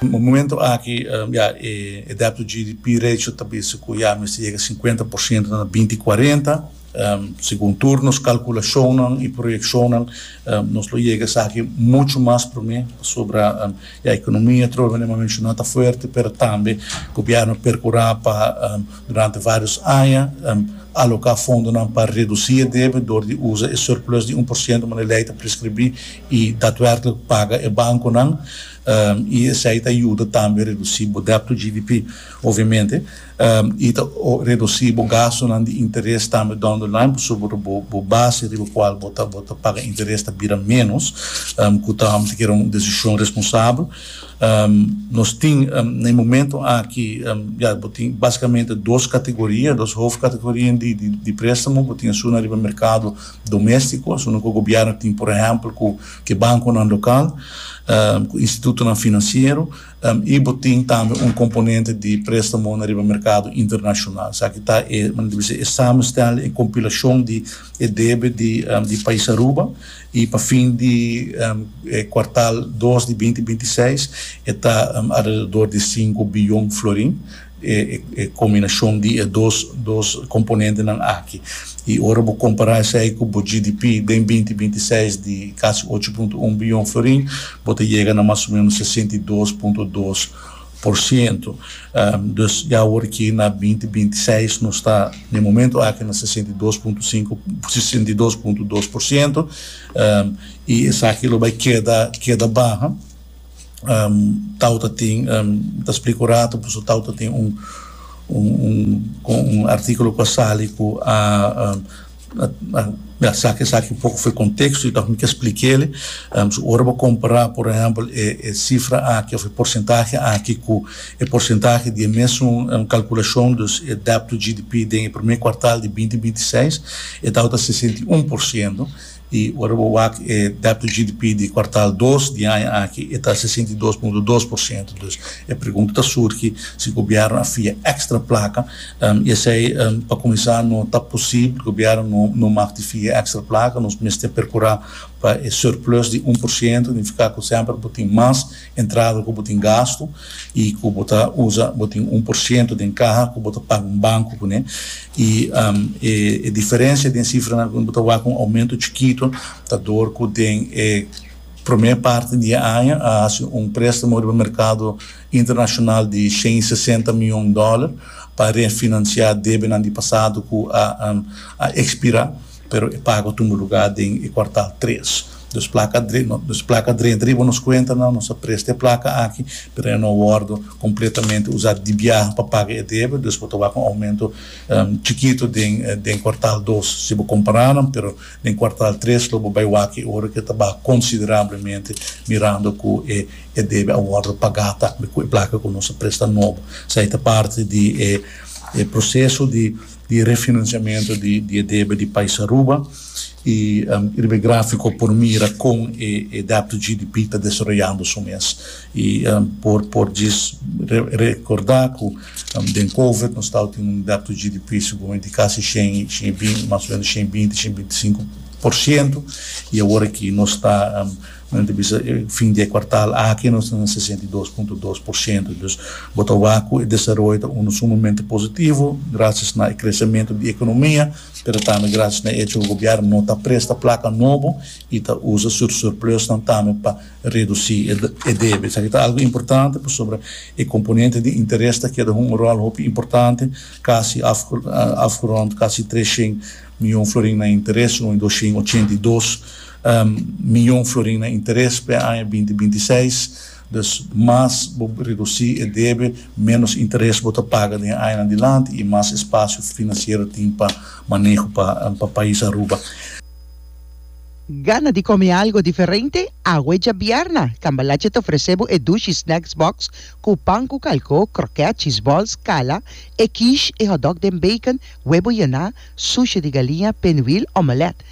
Momento aki ya e dèpto GDP ratio ta bisa ku ya mester yega sinkuenta por siento na binti kuarenta. Segun tur nos kalkulashonnan i proyekshonnan nos lo yega esaki muchu mas promé pasobra ya ekonomia atrobe manera mi a menshoná ta fuerte pero tambe gobièrnu a perkurá pa durante vários aña aloká fondonan pa redusí e debe dor di usa e surplus di un por siento manera e lei ta preskribí i datwèrklik paga e bankonan. y esey ta yuda tambe reduci bo debt to GDP, obviamente, y ta reduci bo gastonan di interes tambe down the line pasobra bo base riba cual bo ta paga interes ta bira menos, cu ta amo ta kere un decision responsabel. Nos tin na e momento aki ya bo tin basicamente dos categoria, dos hoofdcategorieën di prestamo, bo tin esun na riba mercado domestico, esun cu gobierno tin por ehempel cu, ke bankonan lokal ku institutonan finansiero i bo tin tambe un komponente di préstamo na riba merkado internashonal. Esaki ta e, nan debe bisa, e samenstel, e kompilashon di e debe di pais Aruba i pa fin di e kuartal dos di binti binti seis e ta alrededor di sinku biyon florin. e combinacion di e dos dos componentenan aki. Y ora bo compara esey cu bo GDP den binti binti seis di casi ocho punto un billon florin, bo ta yega na mas o menos sesenta y dos punto dos por ciento. Dus ya awor ki na binti binti seis nos ta na e momento aki na sesenta y dos punto cinco, sesenta y dos punto dos por ciento, y esaki lo bay keda keda baha. tau ta tin ta splica un ratu pasobra tau ta tin un un articulo cu a sali cu a a saca esaki un poco fuer contexto y ta hopi ke splik'ele so ora bo compara por ehempel e cifra aki of e porcentahe aki cu e porcentahe di e mesun calculacion dus e debt to GDP den e prome cuartal di binti binti seis e tau ta sesenta i un por ciento I ora bo wak e dato GDP di kuartal dos di aña aki e ta sesenta i dos punto dos por siento. Dus e pregunta ta surgi si Gobièrnu a fia èkstra plaka i esei pa kuminsá no ta posibel. Gobièrnu no no mak di fia èkstra plaka. Nos mester perkurá pa e surplus di un por siento, nifiká ku semper bo tin mas. Entrada ku bo tin gastu i ku bo ta usa, bo tin un por siento den kaha ku bo ta paga un banku kuné i e diferensia den sifranan kuné bo ta wak un oumento chikitu ta dor ku den e promé parti di e aña a hasi un préstamo riba merkado internashonal di shen i sesenta mion dòler pa refinansiá debenan di pasado ku a ekspirá. Pero e pago tumba lugá den e kuartal tres. Nos plaka dre, nos plaka drenta riba nos kuentanan, nos a presta e plaka aki, pero e no wòrdu kompletamente usá di biaha pa paga e debe, dus bo ta wak un oumento chikitu den den kuartal dos si bo kompará nan, pero den kuartal tres lo bo bai wak e ora ke ta baha konsiderablemente mirando ku e e debe a wòrdu pagá tambe ku e plaka ku nos a presta nobo. Esei ta parti di e e proseso di di refinansiamentu di e debe di pais Aruba y riba e grafiko por mira kon e dèb tu GDP ta desaroyando su mes y por djis rekordá ku den covid nos staba tin un dèb tu GDP seguramente di kasi shen y shen y binti mas o menos shen y binti shen y binti sinku por shento y awor aki nos ta Nan ta bisa, E fin di e kuartal aki nos ta na sesenta i dos punto dos por siento. Dus bo ta wak ku e desaroyo ta unda sumamente positivo grasias na e kresementu di ekonomia, pero tambe grasias na e echo ku gobièrnu no ta presta plaka nobo i ta usa su surplusnan tambe pa redusí e debe. Esaki ta algu importante pasobra e komponente di interes ta keda hunga ròl hopi importante, kasi af afgerond kasi tres shen mion florin na interes, un i dos shen ochenta i dos. miyon florin na interes p'e aña binti binti seis. Dus, mas bo redusí e debe, ménos interes bo ta paga den e añanan dilanti i mas espasio finansiero tin pa maneho pa pais Aruba. Gana di kome algu diferente? Awe djabièrna, Cambalache ta ofresé bo e Dushi Snacks Box ku pan ku kalkó, krokèt, cheeseballs, kala, e quiche, e hotdog den bacon, webo yená, sushi di galiña, pinwheel, omelette.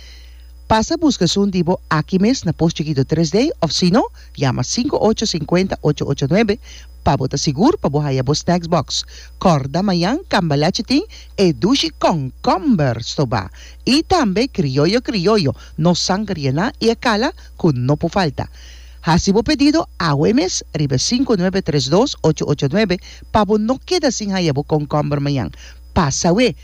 Pasa buska esun di bo aki mes na Post Chikito Tres D òf sino yama sinku ocho sinkuenta ocho ocho nuebe pa bo ta sigur pa bo haya bo snacks box. Kòrda mañan Cambalache tin e dushi kònkòmber stobá i tambe krioyo krioyo, no sanger yená i e kala ku no por falta. Hasi bo pedido awe mes riba e sinku nuebe tres dos ocho ocho nuebe pa bo no keda sin haya bo kònkòmber mañan. Pasa we!